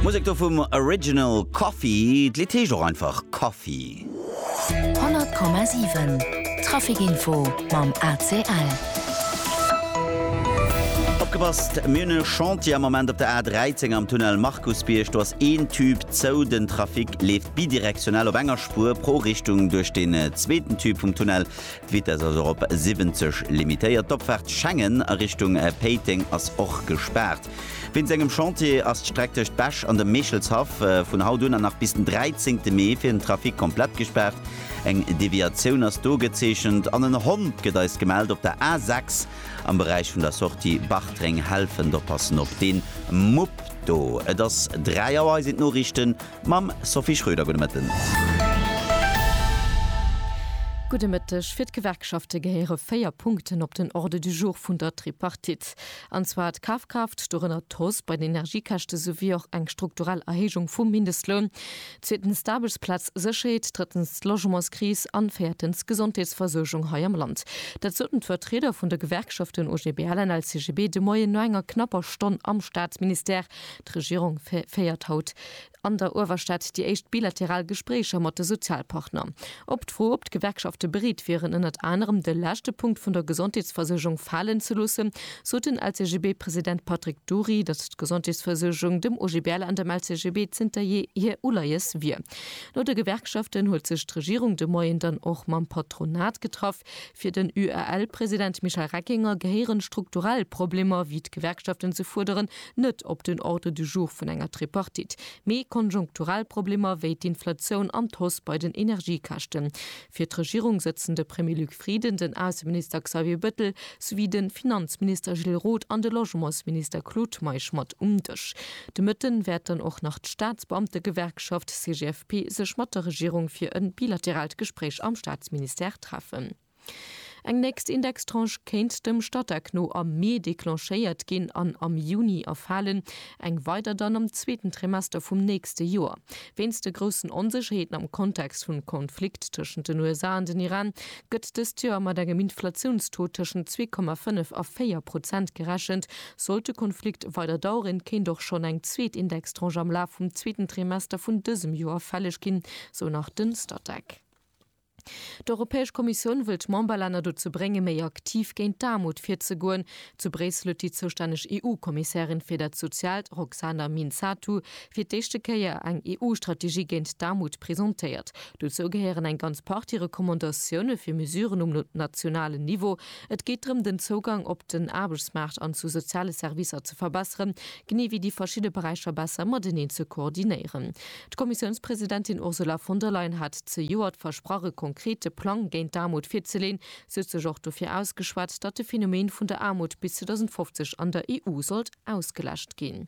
Musek do vum Original Coffee. D'Lidd heescht och einfach Coffee. 100,7 Trafikinfo mam ACL. Opgepasst, mir hunn e Chantier am Moment op der A 13 am Tunnel Markusbierg. Do ass een Tüb zou. Den Trafic leeft bidirektionell op enger Spuer pro Richtung duerch den zweeten Tüb vum Tunnel. D'Vitess ass och op 70 limitéiert. D'Opfaart Schengen a Richtung Péiteng ass och gespaart. Wéinst engem Chantier ass d'Streck tëscht Bech an dem Meechelshaff vun haut un an nach bis den 13 Mee fir den Trafic komplett gespaart. Eng Deviatioun ass do gezeechent an en Hond gëtt eis gemellt op der A6 am Beräich vun der Sortie Bartreng. Helfend oppassen op dee Mupp do. Et ass 3 Auer. Eis sinn d'Noriichten. Mam Sophie Schröder, gudde Mëtten. Gudde Mëtteg. Fir d'Gewerkschafte gehéiere véier Punkten op den Ordre du jour vun der Tripartite. An zwar d'Kafkraaft, dorënner d'Hausse bei den Energiekäschte souwéi och eng strukturell Erhéijung vum Mindestloun, zweetens d'Aarbechtsplazsécherheet, drëttens d'Logementskris an véiertens d'Gesondheetsversuergung hei am Land. Dat soten d'Vertrieder vun de Gewerkschaften OGBL-NL-CGB de Moien no enger knapper Stonn am Staatsministère. D'Regierung féiert haut An der Uewerstad déi éischt bilateral Gespréicher mat de Sozialpartner. Op d'Fro, ob d'Gewerkschafte bereet wieren, ënnert anerem de leschte Punkt vun der Gesondheetsversuergung falen ze loosse, sot den LCGB-President Patrick Dury, datt d'Gesondheetsversuergung dem OGBL an dem LCGB zënter jee hir Uleies wier. No de Gewerkschaften huet sech d'Regierung de Moien dann och mam Patronat getraff. Fir den UEL-President Michel Reckinger gehéieren strukturell Problemer, wéi d'Gewerkschaften se fuerderen, net op den Ordre du jour vun enger Tripartite, mee konjunkturell Problemer wéi d'Inflatioun an d'Hausse bei den Energiekäschten. Fir d'Regierung sëtzen de Premier Luc Frieden, den Ausseminister Xavier Bettel souwéi de Finanzminister Gilles Roth an de Logementsminister Claude Meisch mat um Dësch. De Mëtten wäert dann och nach d'Staatsbeamtegewerkschaft CGFP Pi sech mat der Regierung fir e bilateraalt Gespréich am Staatsministère treffen. Eng nächst Indextranche kéint dem Statec no am Mee declenchéiert ginn an am Juni erfalen, eng weider dann am zweeten Trimester vum nächste Joer. Wéinst de groussen Onsécherheeten am Kontext vum Konflikt tëschent den USA an den Iran gëtt dëst Joer mat engem Inflatiounstaux tëschent zwee Komma fënnef a véier Prozent gerechent, Sollt de Konflikt weider daueren, kéint och schonn eng zweet Indextranche am Laf vum zweeten Trimester vun dësem Joer fälleg ginn, sou nach de Statec. D'Europäesch Kommissioun wëll d'Memberlänner dozou bréngen, méi aktiv géint d'Aarmut virzegoen. Zu Bréissel huet déi zoustänneg EU-Kommissärin fir dat Soziaalt, Roxana Minzatu, fir d'éischte Kéier eng EU-Strategie géint d'Aarmut presentéiert. Dozou gehéieren eng ganz Partie Recommandatioune fir Mesuren um nationalen Niveau, Et geet drëm, den Zougang op den Aarbechtsmaart an zu soziale Servicer ze verbesseren, genee wéi déi verschidde Beräicher besser mateneen ze koordinéieren. D'Kommissiounspresidentin Ursula von der Leyen hat zejoert versprach, e konkrete Plang géint d'Aarmut virzeleen. Si huet sech och dofir ausgeschwat, datt de Phänomen vun der Aarmut bis 2050 an der EU sollt ausgeläscht ginn.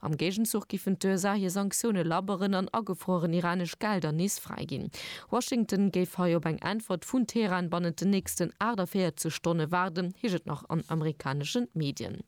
Am Géigenzuch giffen d'USA hir Sanktioune labberen an agefrueren iranesch Gelder nees fräi ginn. Washington géif hei op eng Äntwert vun Teheran bannent den nächsten 48 Stonne waarden, heescht et nach an amerikanesche Medien.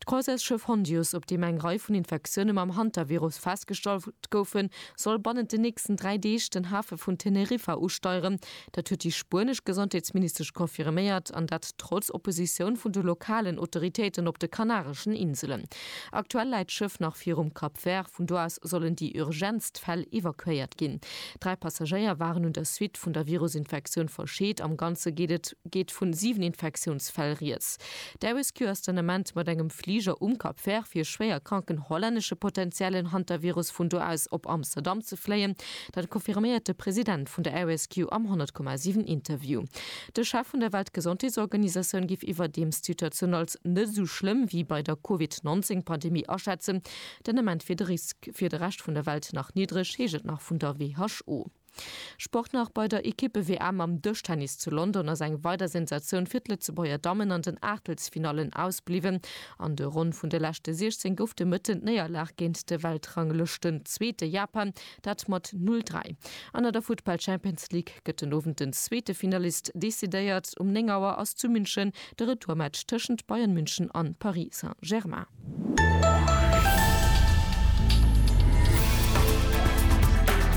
D'Croisièresschëff Hondius, op deem eng Rei vun Infektioune mam Hantavirus festgestallt goufen, soll bannent den nächsten dräi Deeg den Hafe vun Teneriffa usteieren, Dat huet déi spuenesch Gesondheetsministesch confirméiert, an dat trotz Oppositioun vun de lokalen Autoritéiten op de Kanareschen Inselen. Aktuell läit d'Schëff nach virum Cap Vert, vun do aus sollen déi urgentst Fäll evakuéiert ginn. Dräi Passagéier waren un der Suite vun der Virusinfektioun verscheet. Am Ganze geet et geet vun 7 Infektiounsfäll rieds. D'Air-Rescue ass den Ament mat engem Fliger um Cap Vert, fir schwéierkranken hollännesche potentiellen Hantavirus vun do aus op Amsterdam ze fléien. Dat confirméiert de President vun der RSQ am 100, 7 Interview. De Chef vun der Weltgesondheetsorganisatioun géif iwwerdeems d'Situatioun als net esou schlëmm wéi bei der Covid 19 Pandemie aschätzen. Den Ament wier de Risk fir de Rescht vun der Welt nach niddreg, heescht et nach vun der WHO. Sport nach, Bei der Ekippe-WM am Dëschtennis zu London ass eng weider Sensatioun fir d'Lëtzebuerger Dammen an den Aachtelsfinallen ausbliwwen. An de Ronn vun de leschte 16 gouf de Mëtten d'Néierlag géint de Weltranglëschtenzweete Japan dat mat 0, 3. An an der Futtball Champions League gëtt den Owend den zweete Finalist decidéiert. Um 9 Auer ass zu München de Retourmatch tëschent Bayern München an Paris Saint-Germain.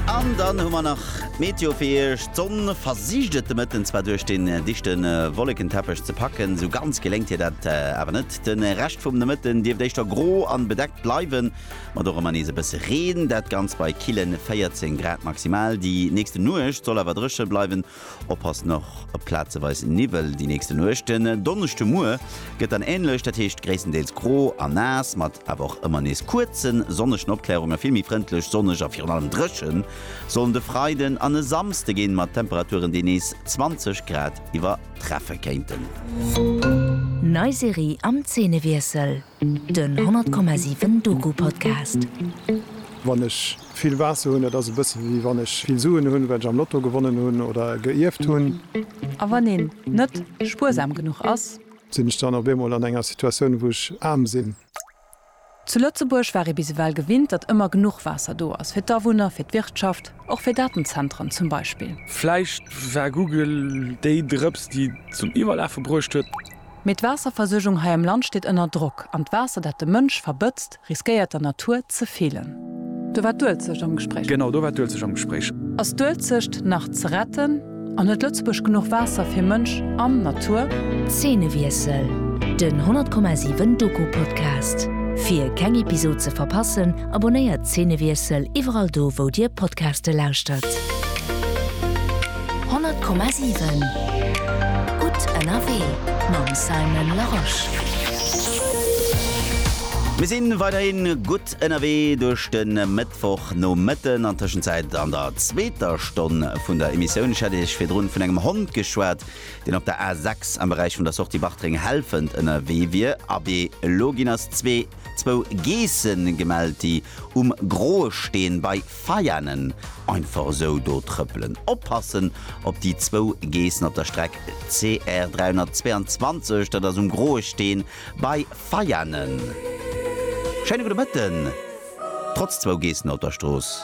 An dann hu mer nach d'Meteo fir Iech. D'Sonn versicht et de Mëtten zwar duerch den dichte Wollekenteppech ze packen, esou ganz geléngt hir dat awer net. De Rescht vum Nomëtten dierft éischter gro an bedeckt bleiwen, mat och ëmmer nees e bësse Reen, dat Ganzt bei killen 14 Grad maximal. Déi nächste Nuecht soll awer dréche bleiwen, oppassen och op plazeweis Niwwel déi nächste Nuecht. Den Donneschdemuer gëtt dann änlech, dat heescht gréisstendeels gro a naass, mat awer och ëmmer nees kuerze sonnegen Opklärungen. Vill méi frëndlech, sonneg a virun allem dréchen sollen de Freiden an e Samsde ginn, mat Temperaturen, déi nees 20 Grad iwwertreffe kéinten. Nei Serie am Zeenewiessel, den 100,7 Doku-Podcast. Wann ech vill Waasser hunn, dat ass e bësse wéi wann ech vill Suen hunn, well ech am Lotto gewonnen hunn oder geierft hunn. A wann een net spuersam genuch ass? Sinn ech dann op eemol an enger Situatioun, wou ech aarm sinn? Zu Lëtzebuerg war ee bis ewell gewinnt, datt ëmmer genuch Waasser do ass, fir d'Awunner, fir d'Wirtschaft, och fir Datenzentren zum Beispill. Vläicht war Google déi Drëps, déi et zum Iwwerlafe bruecht huet. Mee d'Waasserversuergung hei am Land steet ënner Drock, an d'Waasser, dat de Mënsch verbëtzt, riskéiert der Natur ze feelen. Do war d'Uelzecht am Gespréich. Genau, do war d'Uelzecht am Gespréich. Ass d'Uelzecht nach ze retten? An huet Lëtzebuerg genuch Waasser fir Mënsch an Natur? Zeenewiessel, Den 100,7 Doku Podcast. Fir keng Episod ze verpassen, abonnéiert Zeenewiessel iwwerall do wou dir Podcaste lauschtert. 100,7 Gutt ënnerwee mam Simon Larosche. Mir sinn weiderhin gutt Ënnerwee duerch de Mëttwochnomëtten an Tëschenzäit an der zweeter Stonn vun der Emissioun. Ech hat Iech virdrun vun engem Hond geschwat, deen op der A6 am Beräich vun der Sortie Bartreng-Helfent ënnerwee wier. Abee, elo ginn ass zwee zwou Geesse gemellt, déi um Groe Steen bei Veianen einfach esou do trëppelen. Oppassen op déi zwou Geessen op der Streck CR 322, dat ass um Groe Steen Bei Veianen. Schéine gudde Mëtten, trotz zwou Geessen op der Strooss.